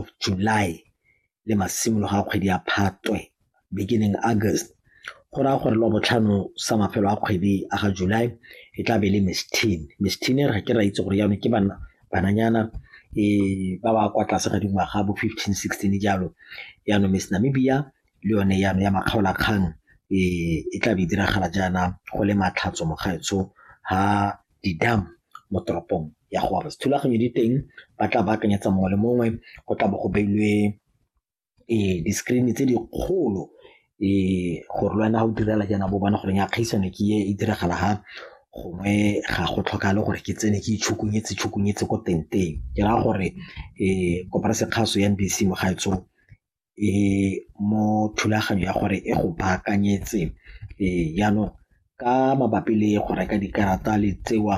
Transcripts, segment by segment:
of July le masimologo a kgwedi ya Phatwe, beginning August, go raya gore Labotlhano sa mafelo a kgwedi a ga July e tla be e le Miss Teen. Miss Teen e re ga ke ra itse gore jaanong ke bana bananyana um ba ba kwa tlase ga dingwaga bo fifteen sixteen jalo jaanong Miss Namibia le yone jaanong ya makgaolakgang um e tla be e diragala jaana go le Matlhatso mo gaetsho ha. di-dam mo toropong ya gore thulaganyo di teng ba tla baakanyetsa mongwe le mongwe go tla bo go beilwe um di-screen tse dikgolo um gore le wena ga o direla jaana bo bona goreng ya kgaisano ke e e diragala ga gongwe ga go tlhokale gore ke tsene ke itshokonyetse tshokonyetse ko tenteng ke raya gore um koporase kgaso ya NBC mo gaetsong e mo thulaganyo ya gore e go baakanyetse jaanong ka mabapi le go reka dikarata le tsewa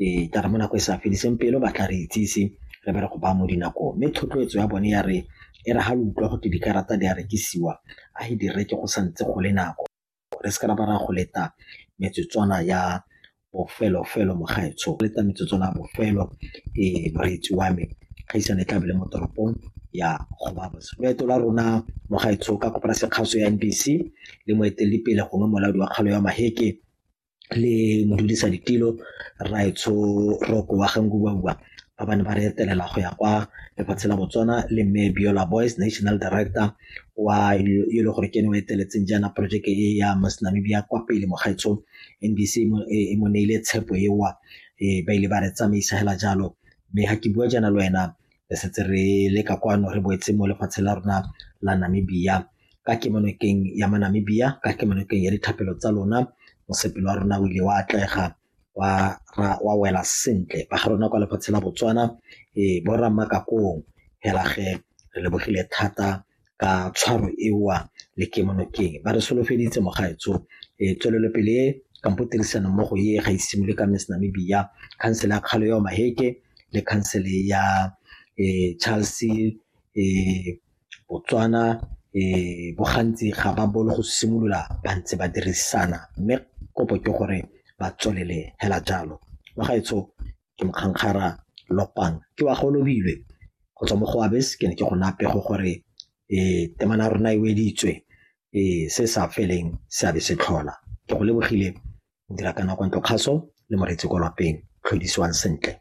e tla re mo nako e sa fediseng pelo ba tla re itsise re be re go ba mo dinakong mme thotloetso ya bone ya re e re ga lo utlwa go te dikarata di a rekisiwa a e di reke go sa ntse go le nako Re se ka ra ba ra go leta metsotswana ya bofelo felo mogaetsho, go leta metsotswana ya bofelo moreetsi wa me, kgaisano e tla be e le mo toropong ya Gobabos. Loeto la rona mogaetsho ka koporasi ya kgaso ya NBC le moeteledipele gongwe molaodi wa kgaolo ya Maheke, le modudisa ditilo raetsho roko wa gankubaua ba ba ne ba re etelela go ya kwa lefatshe la botswana le mme biola boys national director wa e le gore ke ne o eteletseng jaana projeke e ya mas namibia kwa pele mogaetsho nbc e mo neile tshepo ewa e ba ile ba re tsamaisa hela jalo mme ga ke bua jaana le wena re setse re leka kwano re boetse mo lefatshe la rona la namibia ka kemonokeng ya Manamibia ka kemonokeng ya dithapelo tsa lona mosepelo wa rona o ile wa atlega wa ra wa wela sentle ba ga rona kwa lefatshe la Botswana e bo ra makakong helage re lebogile thata ka tshwaro ewa le kemonokeng ba re solofeditse mogaetso e tswelelopele kampo tirisano mmogo e ga isimole ka Miss Namibia khansele ya kgalo ya Maheke le khansele ya e Charles e Botswana bo gantsi ga ba bolo go simolola ba ntse ba dirisana mme kopo ke gore ba tswelele hela jalo. Wa gaetsho ke Mokgangkgara Lopang ke wa Golobilwe go tswa mo go Abes ke ne ke go naya pego gore temana ya rona e weditswe se sa feleng se a be se tlhola. Ke go lebogile Modira kana kwa Ntlokgaso le Moreetsi kwa Lapeng, tlhodisiwang sentle.